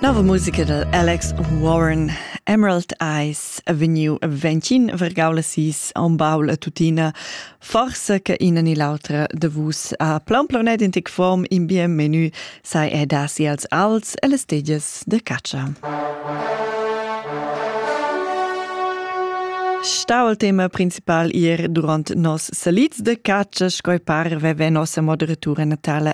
Nova musica dad Alex Warren Emerald Eyes a vegniu ventgin vergau la sis on baul a tutina forsa che ina ni l'autra de vus ha plan planet in tic form in bien menu sai e dasi als alts e les tegias de caccia. Stau al tema principal ir durant nos salids de caccia scoi par veve nossa moderatura natala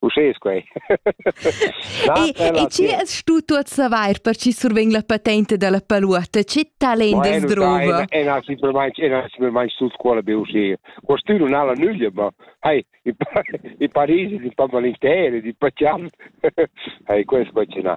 Uschè es quai. e, e chi es stu tuot savair per chi survegn la patente da la paluotta? Che talent es druva? E na simplamaing e na simplamaing sul scuola be uscir. Quest'ün nun ha la nüglia, ma hai, i parisi, i pan valenteri, i pacian. Hai, quest qua ce n'ha.